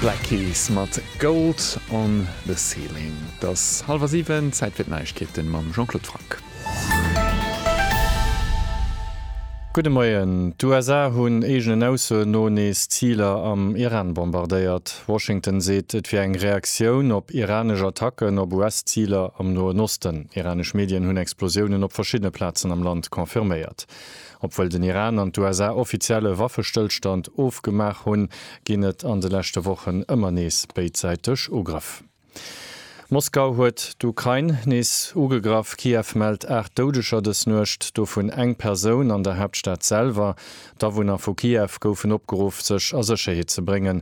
Black Keys mat Gold on the Ceiling. Et ass hallwer siwen, Zäit fir d'Neiegkeete mam Jean-Claude Franck. Gudde Moien. D'USA hunn eegenen Aussoen no nees Ziler am Iran bombardéiert. Washington seet, et wier eng Reaktioun op iranesch Attacken op US-Ziler am Noen Osten. Iranesch Medien hunn Explosiounen op verschiddene Plazen am Land confirméiert. Obwuel den Iran an d'USA offiziell e Waffestëllstand ofgemaach hunn, ginn et an de leschte Wochen ëmmer nees béidsäiteg Ugrëff. Moskau huet d'Ukrain nees ugegraff, Kiew mellt 8 Doudeger dës Nuecht, dovun eng Persoun an der Haaptstad selwer. D'Awunner vu Kiew goufen opgeruff, sech a Sécherheet ze bréngen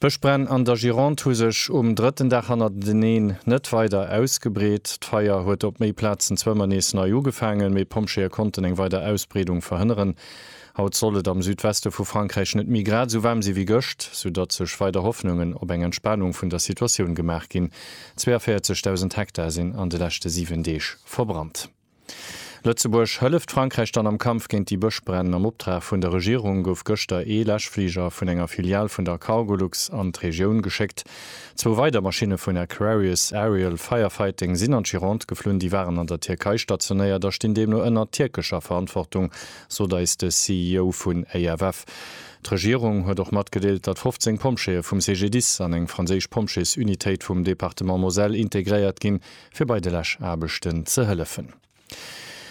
D'Bëschbränn an der Gironde hu sech um drëtten Dag hannerteneen net weider ausgebreet. D'Feier huet op méi Plazen zwar ëmmer nees nei ugefaangen, mee d'Pompjeeë konnten eng weider Ausbreedung verhënneren. Haut soll et am Südweste vu Frankräich net méi grad esou waarm si wéi gëscht, soudatt sech weider Hoffnungen op eng Entspanung vun der Situatioun gemaach ginn. 42.000 Hektar sinn an de leschte 7 Deeg verbrannt. Lëtzebuerg hëlleft Frankräich dann am Kampf géint déi Bëschbränn? Am Optrag vun der Regierung gouf gëschter ee Läschfliger vun enger Filial vun der Cargolux an d'Regioun geschéckt. Zwou weider Maschinne vun Aquarius Aerial Firefighting sinn an d'Gironde geflunn. Déi waren an der Tierkei stationéiert a stinn deemno ënner tierkescher Verantwortung, sot eis de CEO vun AFF. D'Regierung huet och matgedeelt, datt 15 Pompjeeë vum CGDIS an eng franséisch Pompjeesunitéit vum Departement Moselle integréiert ginn. fir bei de Läschaarbechten ze hëllefen.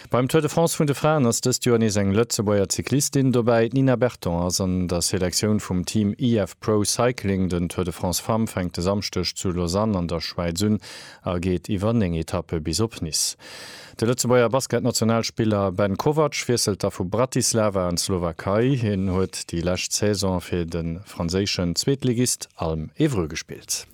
Beim Tour de France vun de Fraen ass dëst Joer nees eng Lëtzebuerger Cyclistin dobäi. D'Nina Berton ass an der Selektioun vum Team IF Pro Cycling. Den Tour de France Femmes fänkt e Samschdeg zu Lausanne an der Schwäiz un a geet iwwer 9 Etappe bis op Nice. De Lëtzebuerger Basketnationalspiller Ben Kovac wiesselt da vu Bratislava an d'Slowakei. Hien huet déi lescht Saison fir de franséischen Zweetligist Alm Évreux gespillt.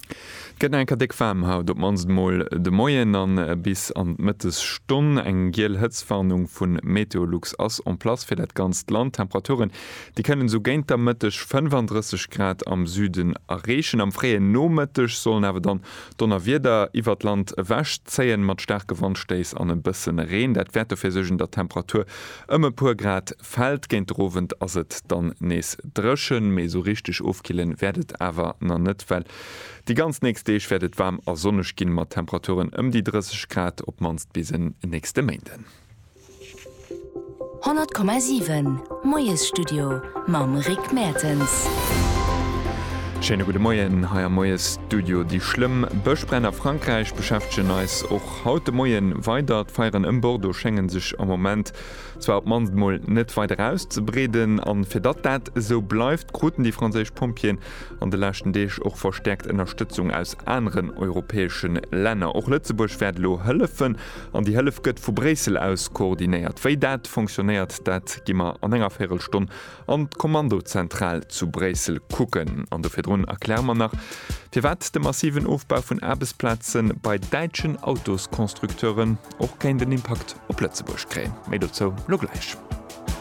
Gëtt enker déck waarm haut, op mannst emol de Moien a bis an d'Mëttesstonn. Eng giel Hëtztwarnung vu Meteolux ass en place fir dat ganzt Land. Temperaturen déi kënnen esou géint der Mëtteg 35 Grad am Süden erreechen. Am fréien Nomëtteg sollen awer dann Donnerwieder iwwert d'Land ewech zéien, mat staarke Wandstéiss an e bësse Reen. Dat wäert dofir suergen, datt d'Temperatur ëm e puer Grad fällt. Géint de Owend ass et dann nees dréchen, mee esou richteg ofkillen wäert et awer nach net, well déi ganz nächst Deeg wäert et waarm a sonneg ginn, mat Temperaturen ëm déi 30 Grad, op d'mannst bis en nächste Méinden. 100,7 Moiesstudio mam Rick Mertens. Schéine gudde Moien hei am Moiesstudio. Déi schlëmm Bëschbränn a Frankräich beschäftegen eis och haut de Moien weider. D'Feieren ëm Bordeaux schéngen sech am Moment Zwar op d'mannst mol net weider auszebreeden. An fir datt dat esou bleift, kruten déi franséisch Pompjeeën an de leschten Deeg och verstäerkt Ënnerstëtzung aus aneren europäesche Länner. Och Lëtzebuerg wäert elo hëllefen an déi Hëllef gëtt vu Bréissel aus koordinéiert. Wéi dat fonctionnéiert, dat gi mer an enger Véirelstonn an d'Kommandozentral zu Bréissel kucken. An do virdrun erkläre mer nach, firwat de massiven Ofbau vun Aarbechtsplaze bei däitschen Autosconstructeuren. och kéint en Impakt op Lëtzebuerg kréien. Méi dozou lo gläich.